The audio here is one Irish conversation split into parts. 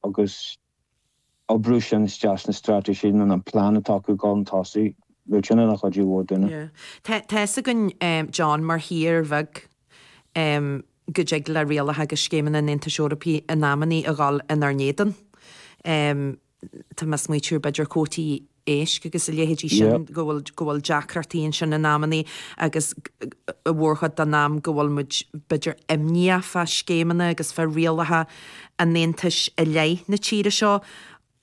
agus oibriú sin isteach sna straitéisí nó na plean atá acu ag gabháil chun tosaigh, beidh sin ina chuidiú mhór dúinne. Tá fhios againn, John, mar thír bheag, go dtig le rialacha agus scéimeanna an Aontais Eorpaigh in amannaí a dhul inár n-éadan. Tá mé ag smaoitiú ar b'fhéidir cuótaí. éisc agus a leithéidí sin, go bhfuil, go bhfuil deacrachtaí ansin in amannaí agus an mhórchuid den am go bhfuil muid, b'fhéidir imníoch fá scéimeanna agus fá rialacha an Aontais i leith na tíre seo.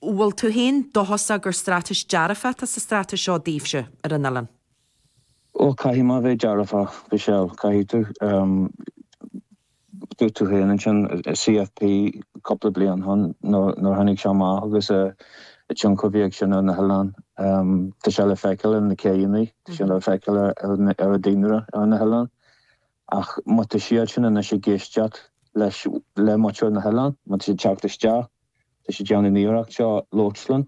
Bhfuil tú féin dóchasach gur straitéis dearfach atá sa straitéis seo daoibhse ar an oileán? Bhuel, caithfidh muid a bheith dearfach, a Mhichelle, caithfidh tú. Dúirt tú féin ansin an CFP cúpla bliain ó shin nuair a tháinig sé amach agus an tionchar a bhí ag sin ar na hoileáin. Tá sé le feiceáil ar na céidheannaí, tá sé le feiceáil ar an daonra ar na hoileáin. Ach má tá siadsan anois ag éisteacht leis, le muintir na n-oileán, má tá siad ag teacht isteach, Tá siad ag déanamh an iarracht seo labhairt linn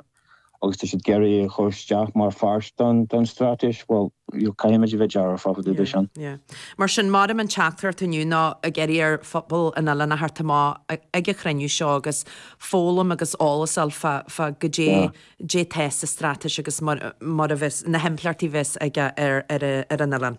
agus tá siad ag iarraidh é a chur isteach mar pháirt don straitéis. Bhuel, caithfimid a bheith dearfach, fá dtaobh de sin. Mar sin, maraim an teachtaireacht inniu ná ag iarraidh ar phobal an oileáin a theacht amach ag an chruinniú seo agus foghlaim agus eolas a fháil fá goidé atá sa straitéis agus mar a bheas, na himpleachtaí a bheas aige ar an oileán.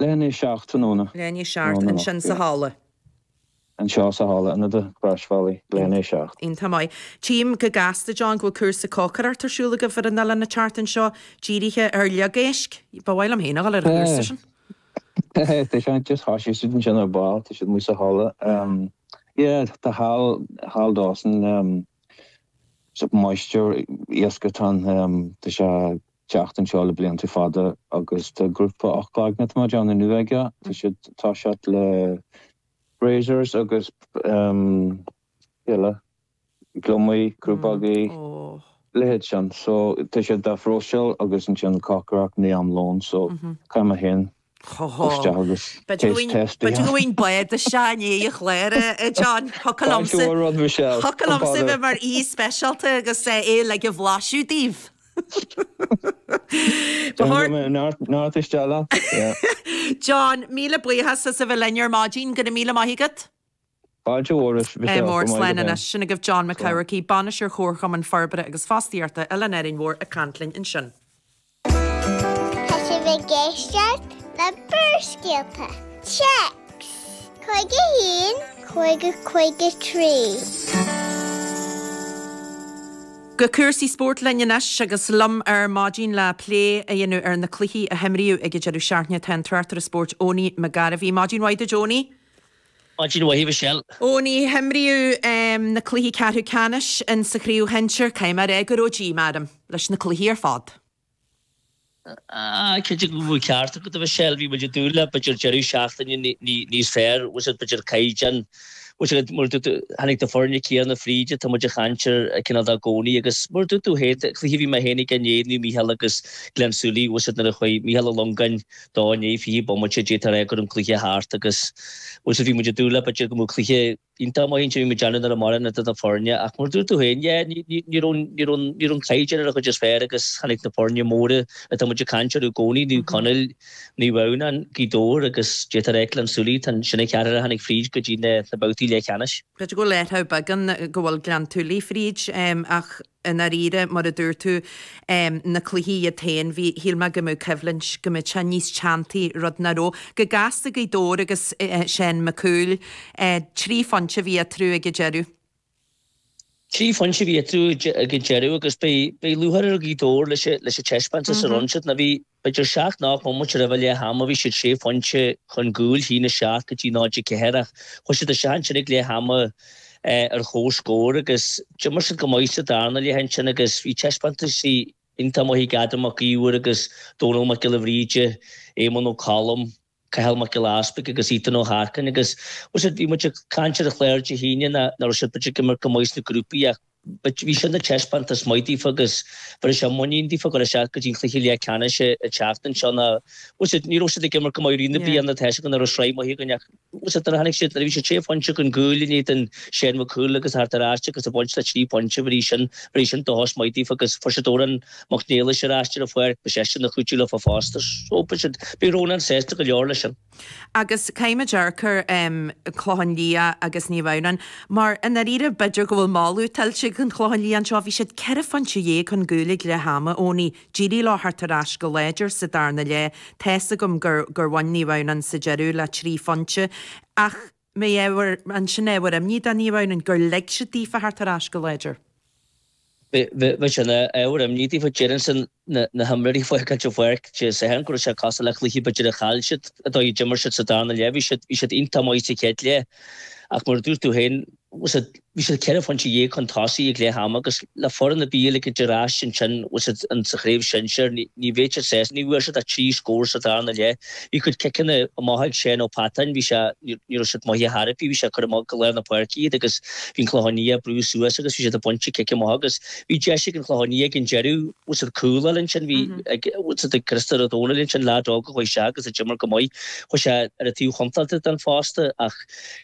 Leath i ndiaidh a seacht tráthnóna. Leath i ndiaidh a seacht ansin sa halla. Anseo sa halla Ionad an Chrois Bhealaigh. Leath i ndiaidh a seacht. Iontach maith. Tchím go gasta, John, go bhfuil cúrsa cócaireacht ar siúl agaibh ar an oileán an tseachtain seo, dírithe ar fhliogéisc. Ba mhaith liom féin a dhul ar an chúrsa sin. Hé, tá siad just thosaigh siad ansin ar ball, tá siad amuigh sa halla. Yeah, tá Hal, Hal Dawson, so máistir iasc atá ann, tá sé. teacht anseo le blianta fada agus tá grúpa ocht gcloigne ar maidin inniu aige. Tá siad tá siad le razors agus eile, gliomaigh, crúbógaí, leithéid sin. So tá siad dá phróiseáil agus ansin cócaireacht in am lóin so caithfidh mé féin B'fhéidir go bhfuil bád isteach i ndiaidh an chláir, a John. Thiocfadh liomsa a bheith mar aoi speisialta agus é a bhlaiseadh daoibh. John, míle buíochas as a bheith linn ar maidin. Go raibh míle maith agat. Mór, slán anois. Sin agaibh John Mac Eachmharcaigh, Bainisteoir Chomharchumann Forbartha agus Fostaíochta Oileán Árainn Mhór ag caint linn ansin. Tá sibh ag éisteacht le Barrscéalta, text, 51 50 53. Go cúrsaí spóirt linn anois agus liom ar maidin le plé a dhéanamh ar na cluichí a himríodh ag an deireadh seachtaine tá an tráchtaire spóirt Eoiní Mac Gairbheith. Maidin mhaith duit Eoiní. Maidin mhaith, Michelle. Eoiní, himríodh na cluichí ceathrú ceannais in sa chraobh shinsir, caithfidh mé a rá go raibh díomá orm leis na cluichí ar fad. Ah, cinnte go bhfuil an ceart agat, a Mhichelle, bhí muid ag dúil le b'fhéidir deireadh seachtaine níos fearr, tá's agat, b'fhéidir caighdeán, tá's agat, mar a dúirt tú, tháinig na foirne céanna fríd, tá muid ag caint orthu cineál de i gcónaí agus mar a dúirt tú féin, cluiche a bhí mé féin aige inné, Naomh Mícheál agus Gleann tSúilí, tá's agat, nuair a chuaigh Mícheál Ó Longáin, De i ndiaidh fiche bomaite d'fhéadfá a rá go raibh an cluiche thart agus tá's agat, bhí muid ag dúil le b'fhéidir go mbeadh cluiche iontach amach anseo bhí muid deanamh nuair a maireann na duine foirne ach mar a dúirt tú féin, yeah, ní raibh, ní raibh, ní raibh an caighdeán ar an chuid is fearr agus tháinig na foirne móra atá muid ag caint orthu i gcónaí, Naomh Conaill, Naomh Adhamhnáin, Gaoth Dobhair agus d'fhéadfá a rá Gleann tSúilí, tá an sin an ceathrar a tháinig fríd go dtí na babhtaí leathcheannais. B'fhéidir go bhfuil athrú beag ann go bhfuil Gleann tSúilí fríd ach I ndáiríre, mar a dúirt tú, na cluichí iad féin, bhí, shíl mé go mbeadh coimhlint, go mbeadh sé níos teanntaí, rud nach raibh. Go gasta Gaoth Dobhair agus Seán Mac Cumhaill. Trí phointe a bhí eatarthu ag an deireadh. Trí phointe a bhí eatarthu ag an deireadh agus beidh lúcháir ar Ghaoth Dobhair leis an taispeántas a rinne siad. B'fhéidir seacht nó ocht mbomaite roimh leath ama bhí siad sé phointe chun gcúil, 1 7 go dtí 0 4, ach chuaigh siad isteach ansin ag leath ama ar chomhscór agus d'imir siad go maith sa darna leath ansin agus bhí taispeántais iontach maith ag Adam Mac Íomhair agus Dónall Mac Giolla Bhríde, Éamonn Ó Colm. Cathal Mac Giolla Easpaig agus Ethan Ó hArcáin agus, tá's agat, bhí muid ag caint ar an chlár Dé hAoine nach raibh siad b'fhéidir ag imirt go maith sna grúpaí ach bhí sin ina thaispeántas maith daofa agus bhéarfaidh sé muinín daofa ag gabháil isteach go dtí an cluiche leath ceannais an tseachtain seo ná, tá's agat, ní raibh siad ag imirt go maith i rith na bliana, tá a fhios againn nach raibh sraith maith againn ach, tá's agat, nuair a tháinig siad, nuair a bhí siad sé phointe chun gcúil inné in éadan Seán Mac Cumhaill agus theacht ar ais agus a bhaint le trí phointe, bhéarfaidh sin, bhéarfaidh sin dóchas maith daofa agus fuair siad Odhrán Mac Niallais ar ais ar an pháirc, beidh seisean ina chuidiú leofa fosta, so beidh siad. Bhí Rónán sásta go leor leis sin. Agus caithfidh muid amharc ar Chlochán Liath agus Naomh Adhamhnáin, mar i ndáiríre, b'fhéidir go bhfuil moladh tuillte ag an Chlochán Liath anseo. Bhí siad ceithre phointe dhéag chun gcúil ag leath ama, Eoiní, d'éirigh leo theacht ar ais go láidir sa darna leath, tá's agam gur bhain Naomh Adhamhnáin sa deireadh le trí phointe, ach. mbeidh ábhar, an sin ábhar imní do Naomh Adhamhnáin gur lig siad daofa theacht ar ais go láidir. Beidh, beidh sin ina ábhar imní daofa, déarfainn sin, na, na himreoirí ag fágáilt an pháirc, déarfainn go raibh sé cosúil le cluiche b'fhéidir a chaill siad, an dóigh a d'imir siad sa darna leath, bhí siad, bhí siad iontach maith sa chéad leath ach mar a dúirt tú féin, tá's agat, Bhí siad ceithre phointe dhéag chun tosaigh ag leath ama agus le foireann ar bith eile ar ais ansin sa Chraobh Shinsir, ní bhféadfadh siad séanadh. Ní bhfuair siad ach trí scór sa darna leath. Bhí a gcuid ciceanna amach ag Seán Ó Peatáin, bhí sé, ní raibh siad maith ar chor ar bith, bhí sé ag cur amach go lár na páirce iad agus bhí an Clochán Liath ag brú suas agus bhí siad ag baint cic amach agus bhí deis ag an Chlochán Liath ag an deireadh cúl ansin, bhí ag Cristofer Ó Dónaill ansin, leaid óg a chuaigh isteach agus a d'imir go maith, chuaigh sé ar an taobh chontráilte den fosta ach.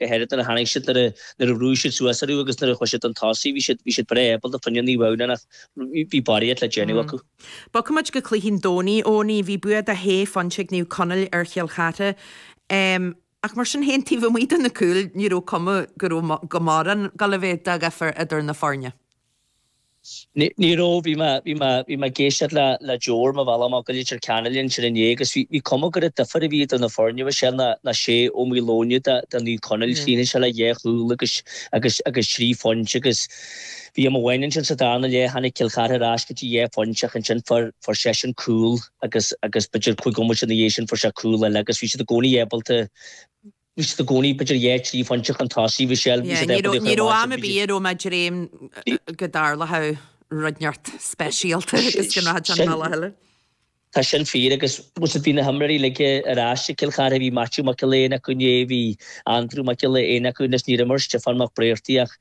go háirid nuair a tháinig siad, nuair a bhrúigh siad suas orthu agus nuair a chuir siad an tosaigh, bhí siad, bhí siad breá able fá choinne Naomh Adhamhnáin ach bhí barraíocht le déanamh acu. Bogfaidh muid go cluichí an Domhnaigh Eoghain. Bhí bua de shé phointe ag Naomh Conaill ar Chill Chartha ach mar sin féin taobh amuigh de na cúil ní raibh cuma go raibh go mórán go leith de dhifear idir na foirne. Ní raibh. Bhí mé, bhí mé, bhí mé ag éisteacht le, le Joe ar mo bhealach amach go Leitir Ceanainn ansin inné agus bhí, bhí cuma gur an difear a bhí idir na foirne is é ná, ná Ó Maoileoin de, de Naomh Conaill, chríochnaigh sé le dhá chúl agus, agus, agus thrí phointe agus bhí am amháin ansin sa darna leath tháinig Cill Chartha ar ais go dtí dhá phointe ach ansin fuair, fuair seisean cúl agus, agus b'fhéidir cúig nóiméad ina dhiaidh sin fuair sé cúl eile agus bhí siad i gcónaí ábalta Bhí siad i gcónaí b'fhéidir dhá trí phointe chun tosaigh, mo sheal, bhí siad ag bunaíocht ar an mbád sin, bhí siad. Ní raibh am ar bith i ró mé dréim go dtarlódh rud neart speisialta agus go ndéanfadh an bealach eile. Tá sin fíor agus, más rud, bhí na himreoirí laige ar ais ag Cill Charthaigh, bhí Maitiú Mac Giolla Éin acu inné, bhí Andrew Mac Giolla Éin acu anois, ní raibh mar Stiofán Mac Bréartaigh ach,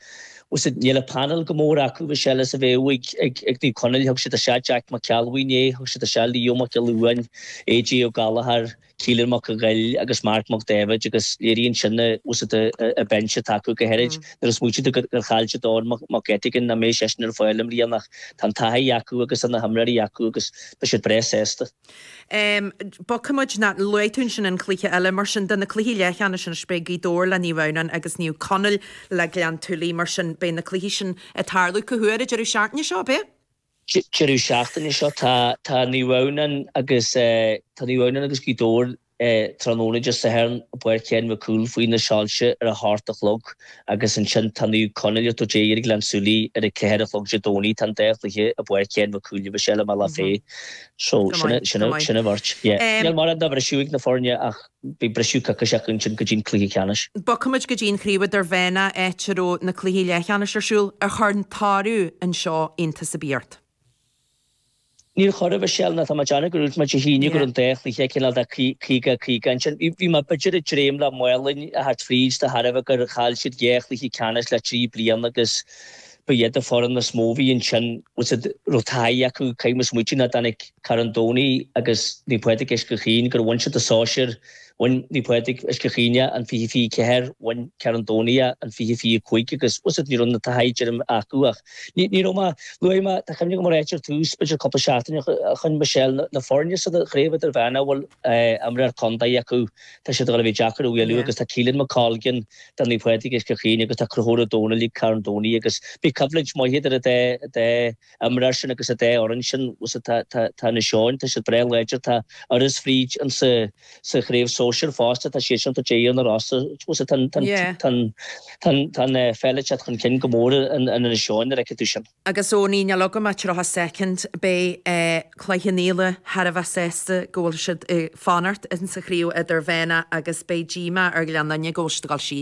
más rud, níl an painéal chomh mór acu, bhí sé eile is a bheadh ag, ag Naomh Conaill, thug siad air seo Jack Mac Ceallbhuí inné, thug siad air seo Leo Mac Giolla Uain, AJ Ó Gallachair, Keelan Mac Ghoill agus Mark Mac Daibhéid agus léiríonn sin na hionadaithe atá acu go háirid nuair a smaoitíonn tú gur chaill siad Eoghan Mac Eiteagain nach mbeidh seisean ar fáil i mbliana ach tá an taithí acu agus tá na himreoirí acu agus beidh siad breá sásta. Bogfaidh muid ná luaigh tú ansin an cluiche eile mar sin de na cluichí leathcheannais anois beidh Gaoth Dobhair le Naomh Adhamhnáin agus Naomh Conaill le Gleann Tuilí mar sin beidh na cluichí sin ag tarlú go luath deireadh seachtaine seo beidh deireadh seachtaine seo tá Naomh Adhamhnán agus tá Naomh Adhamhnán agus Gaoth Dobhair tráthnóna Dé Sathairn i bPáirc Shéan Mhic Cumhaill faoi na soilse ar a hocht a chlog agus ansin tá Naomh Conaill ag tabhairt aghaidh ar Gleann tSúilí ar a ceathair a chlog Dé Domhnaigh tá an dá chluiche i bPáirc Shéan Mhic Cumhaill agus eile maith le féith so sin ráite níl mórán de bhriseadh ag na foirne ach Beidh briseadh coicíseach ansin go dtí an cluiche ceannais. Bogfaimid go dtí an chraobh idirmheánna áit a raibh na cluichí leathcheannais ar siúl ar Chorn tSáraidh anseo, iontas ar bith ort? Níor chóir a bheith sílim ná tá mé ag déanamh go raibh muid ag síleadh go raibh an dá chluiche cineál de 50 50 ansin. Bhí mé b'fhéidir ag dréim le Maigh Line a theacht fríd de thairbhe gur chaill siad dhá chluiche ceannais le trí bliana agus, Ba iad na foirne is mó a bhí ansin agus a raibh taithí acu ag caoineadh is muide ná dtáinig Carn Domhnaigh agus Naomh Pádraig Uisce Chaoin gur bhain siad an sóisear, bhain Naomh Pádraig Uisce Chaoin é an fiche fiche ceathair, bhain Carn Domhnaigh é an fiche fiche cúig agus ní raibh an taithí acu ach ní raibh mé, luaigh mé, tá cuimhne agam a rá ar dtús, b'fhéidir cúpla seachtaine ó shin, Michelle, na foirne insa chraobh idirmheánach a bhfuil imreoir contae acu. Tá siad ag dul a bheith deacair a bhualadh agus tá Caolan McColgan do Naomh Pádraig Uisce Chaoin agus tá Conchúr Ó Domhnaill ag Carn Domhnaigh agus beidh coimhlint mhaith idir an dá imreoir sin agus an dá fhoireann sin. Tá Inis Eoghain, tá siad breá láidir, tá Iorras b'fhéidir insa chraobh sóisir fosta, tá siad sin ag déanamh an rása. Tá an pheil ag teacht chun cinn go mór in Inis Eoghain, an bhfeiceann tú sin? Agus Owenie, níl agam ach 30 soicind, beidh Cloich Cheann Fhaola thar a bheith sásta go bhfuil siad ag fanacht insa chraobh idirmheánach agus beidh díomá ar Ghleann Fhinne go bhfuil siad ag dul síos.